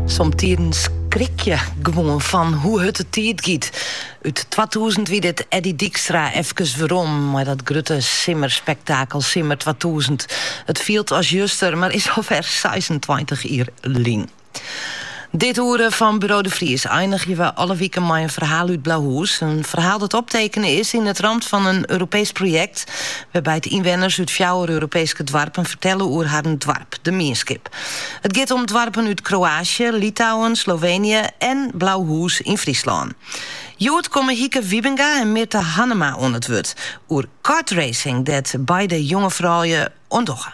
Somtidens skrik je gewoan fan hoe hurd de tiid giet. Ut 2000 wie dit Eddy Dijkstra efkes werom mei dat grutte simmerspektakel Simmer 2000. It fielt as juster, mar is alwer 26 jier lyn. Dit oere fan Buro de Vries einigje we alle wiken mei in ferhaal út Blauhús. In ferhaal dat optekene is yn it ramt fan in Europeesk projekt wêrby't ynwenners út fjouwer Europeeske doarpen fertelle oer harren doarp, de mienskip. It giet om doarpen út Kroaasje, Litouwen, Sloveenje en Blauhús yn Fryslân. Hjoed komme Hieke Wybinga en Mirthe Hannema oan it wurd oer kartracing dêr't beide jonge froulju oan dogge.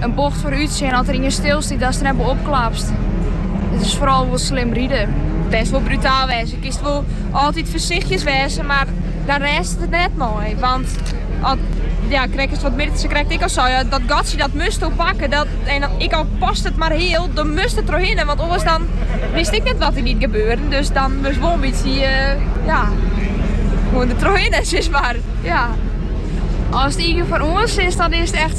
In bocht foarútsjen as der ien stilstiet, datst der net boppe-op klapst. It is foaral wol slim ride. Bêst wol brutaal wêze. Kinst wol altyd foarsichtjes wêze, mar dêr rêdst it net mei. Want ja, krekt as wat Mirthe krekt ek al sei, dat gatsje dat moatsto pakke. Dat, en ek al past it mar heal, dan moatst der trochhinne. Want oars dan witst ek net wat der net gebeure. Dus dan moatst wol in bytsje, eh, ja, gewoan der trochhinne, sis mar. Ja. Als het eentje van ons is, dan is het echt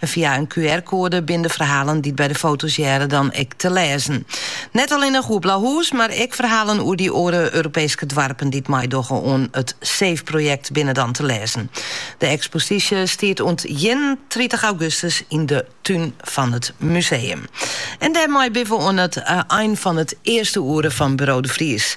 Fia in QR-koade binne de ferhalen dy't by de foto's hearre dan ek te lêzen. Net allinnich oer Blauhús, mar ek ferhalen oer dy oare Europeeske doarpen dy't meidogge oan it Save-projekt binne dan te lêzen. De eksposysje stiet oant ienentritich augustus yn de tún fan it museum. En dêrmei binne we oan it ein fan it earste oere fan Buro de Vries.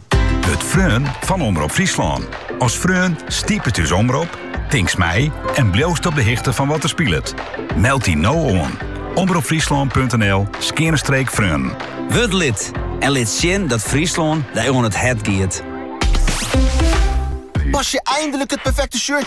Wurd freon fan Omrop Fryslân. As freon stipest ús omrop, tinkst mei en bliuwst op de hichte fan wat der spilet. Meld dy no oan. Omropfryslan.nl/freonen. Wurd lid en lit sjen dat Fryslân dy oan it hert giet. Pas je eindelijk het perfecte shirtje?